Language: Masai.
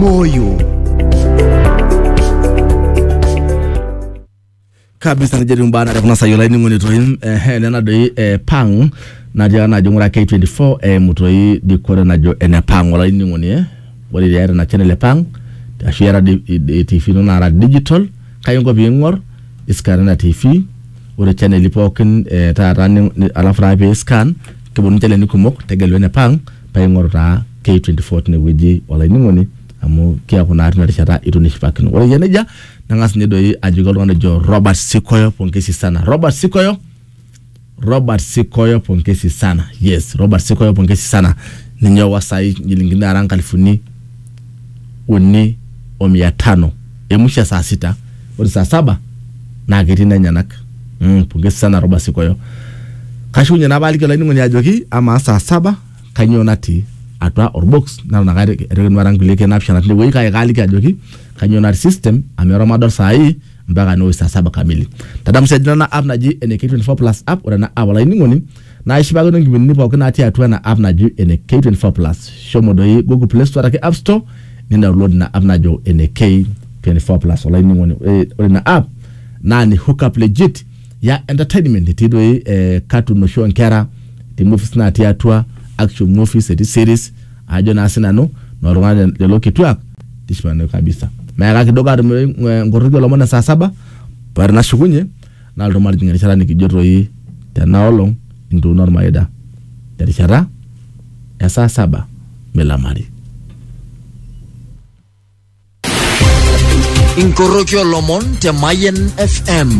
moyo kabisa nejetu mbaa nare kuna sayiolo ainining'oni toi ehe nena doi eh, pang natii ena ajo ng'ura K24 eimu toi dikore najo ene pang olainining'oni eh ore iata ina channel e pang ashu iata di- i- i- TV ino nara digital kai inko piing'or iscan ina TV ore channel pookin eh, taata ni- ni- alafu taa pee scan keponu channel kumok tegelu ene pang paa ing'oru taa K24 tine wueji olainining'oni amu keaku naa tina rishata itu nishipakino. Ore eyia nejia nang'as ninye doi ajoki oltung'ani ojo Robert Sikoyo pongesi sana. Robert Sikoyo, Robert Sikoyo pongesi sana. Yes, Robert Sikoyo pongesi sana. Ninye owa saai inchilingini naara inkalifuni uni o mia tano emusha saa sita ore saa saba naa ketii nenyanak mm, pongezi sana Robert Sikoyo kashukunye naa paaliki olainining'oni ajoki amaa saa saba kanyoo natii atua orbox nalo naka atekenuata nkulie keek naapishana tine wueji kake kaaliki ajoki kanyoo natii system amu eton madol saa hii mpaka newoi saa saba kamili tadamu sii ajo ore ena app naji ene K24 plus app ore ena app olainining'oni naa ishipakino nkipindini pooki natii atua ena app naji ene K24 Plus. Shomo doi Google Play Store araki App Store nidownload ina app najo ene K24 Plus. Olainining'oni ore ore ina app naa ni hook up legit ya entertainment etii doi eh, cartoon oshi oonkera, etii movies natii atua, action movies, etii series ajo naa sinanu nooltung'anak lelo kituak tishipakinoyu kabisa. Meaka kidogo atum eh, nkoroki olomon e saa saba ore nashukunye Nalotu matijing erishata nikijo toi tena olong entuuno ormaida terishata e saa saba milamari. Inkoroki olomon te Mayen FM.